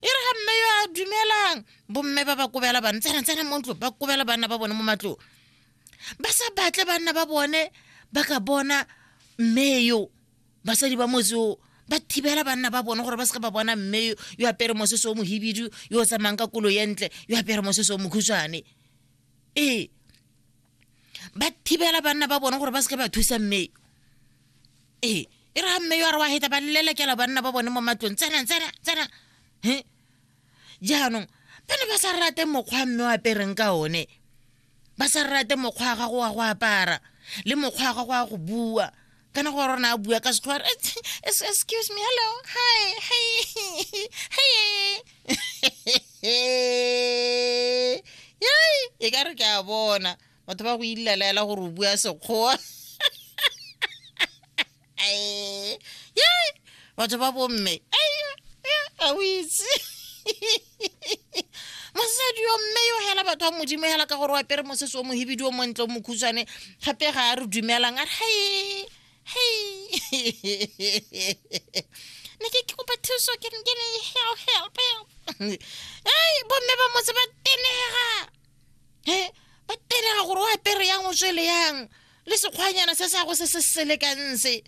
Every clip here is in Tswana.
e re ga mme yo a dumelang bomme ba ba kobela bana tsena mo ntlo ba kobela bana ba bone mo matlong ba sa batle banna ba bone ba ka bona mme yo basadi ba motse o ba thibela banna ba bone gore ba seka ba bona mme yo yo apere mosese o mohibidu yo o tsamayang ka kolo ye ntle yo apere mosese o mokhutshwane ee ba thibela banna ba bone gore ba seke ba thusa mmeyo ee e re ga mmeyo a re wa heta ba lelekela banna ba bone mo matlong tsena tsena tsena he jaanong ba ne ba sa rate mokgwa mme o apereng ka one ba sa rate mokgwa wa gago wa go apara le mokgwa wa gago wa go bua kana go rona a bua ka setlhoa excuse me hello hi hi hi yai e ka re ke a bona batho ba go ilelaela gore o bua sekgowa yai batho ba bomme a o itse mosadi yo mme yo hela batho ba modimo hela ka gore wa pere mosese o mohibidi o montle o mokhutshwane gape ga a re dumelang a re hei hei ne ke ke kopa thuso ke ke ne help help help ei bomme ba motse ba tenega he ba tenega gore o apere yang o tswele yang le sekgwanyana se sa go se se selekang se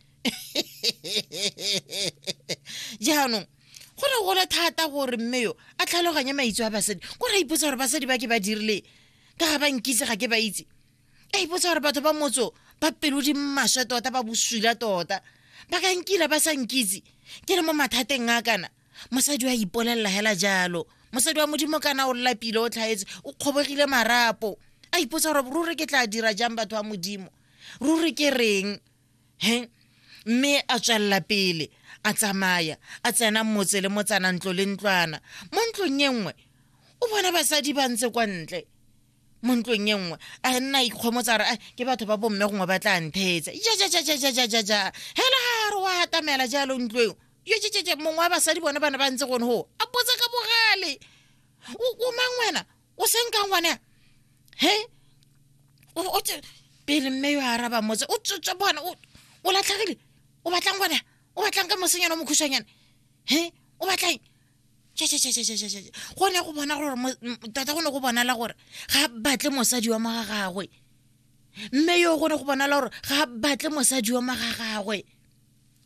jaanong go ne gole thata gore mme yo a tlhaloganye maitso a basadi ko ra ipotsa gore basadi ba ke ba dirile ka ga ba nkitse ga ke ba itse a ipotsa gore batho ba motso ba pelo di maswe tota ba boswila tota ba ka nkila ba sa nkitse ke le mo mathateng a kana mosadi wa ipolelela hela jalo mosadi wa modimo kana o lapile o tlhaetse o kgobogile marapo a ipotsa gore ruri ke tla dira jang batho ba modimo ruri ke reng he mme a tswelela pele a tsamaya a tsena motse le motsana ntlo le ntlwana mo ntlong e nngwe o bona basadi ba ntse kwa ntle mo ntlong e nngwe a nna ikgomotsa re ke batho ba bomme gongwe ba tla ntheetsa jajajajajajaja hela ga re wa atamela jalo ntlo eo jejejeje mongwe wa basadi bone ba ne ba ntse gone go a potsa ka bogale o mang wena o senka ngwana he o tse pele mme yo araba motse o tsotsa bona o latlhagile o batlang ngwana o batlang ka mosenyana o mokhushanyana he o batlang gone go bona gore tota go ne go bonala gore ga batle mosadi wa maga gagwe mme yo gone go bonala gore ga batle mosadi wa maga gagwe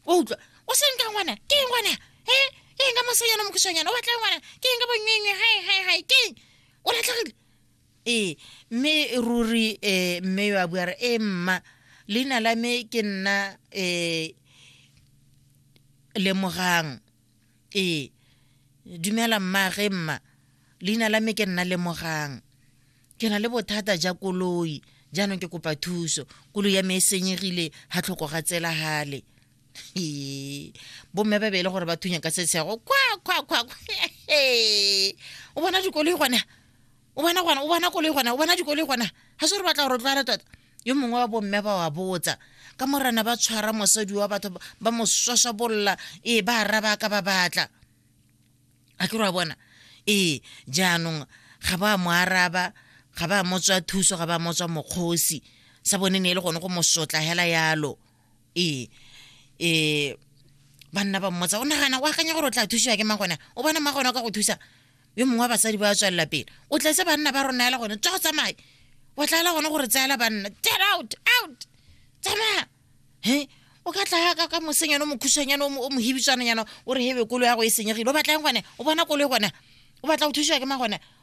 wa utlwa o seng ka ngwana ke eng ngwana e ke eng ka mosanyana mokisanyana o batla ngwana ke eng ka bonyengwe hai hai hai ke eng o latlhegile ee mme ruri um mme yo a bua re e mma leina la me ke nna um lemogang ee dumela mmaage mma leina la me ke nna lemogang ke na le bothata ja koloi jaanong ke kopa thuso koloi ya me e senyegile ga tlhoko ga tsela gale ee bomme ba beele gore ba thunya ka setsego kwa kwa kwa o bona dikoloi gone o bona gona o bona koloi gona o bona dikoloi gona ga se re batla gore tlwala tota yo mongwe wa bomme ba wa botsa ka morana ba tshwara mosadi wa batho ba mo swaswabolola ee ba araba ka ba batla a ke re wa bona ee jaanong ga ba mo araba ga ba motswa thuso ga ba motswa mokgosi sa bone ne e le gone go mosotla hela yalo ee um banna ba mmotsa o nagana o akanya gore o tla thusiwa ke magona o bona magona o ka go thusa yo mongwe wa basadi ba tswelela pele o tletse banna ba rona ela gone tswa go tsamaye wa tlaela gone gore tseela banna get out out tsamaya he o ka tlaya ka mosenyana o mokhushanyana o mohibitswananyana o re hebe kolo ya go e senyegile o batlang gone o bona kolo e gona o batla go thusiwa ke magone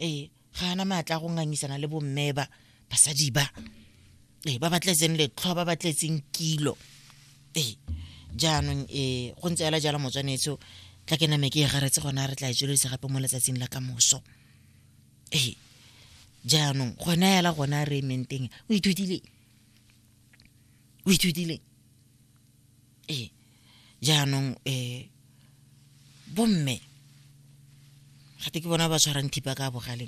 ee ga ana maatla go ngangisana le bomme ba basadi ba ee ba batletseng letlhwa ba batletseng kilo ee jaanong ee go ntse ela jalo motswanetso tla ke name ke e garetse gona re tla e tswelelisa gape mo letsatsing la ka moso ee jaanong gona ela gona re ementeng o ithutile o ithutile ee jaanong um bomme gate ke bona ba tshwarang thipa ka bogaleng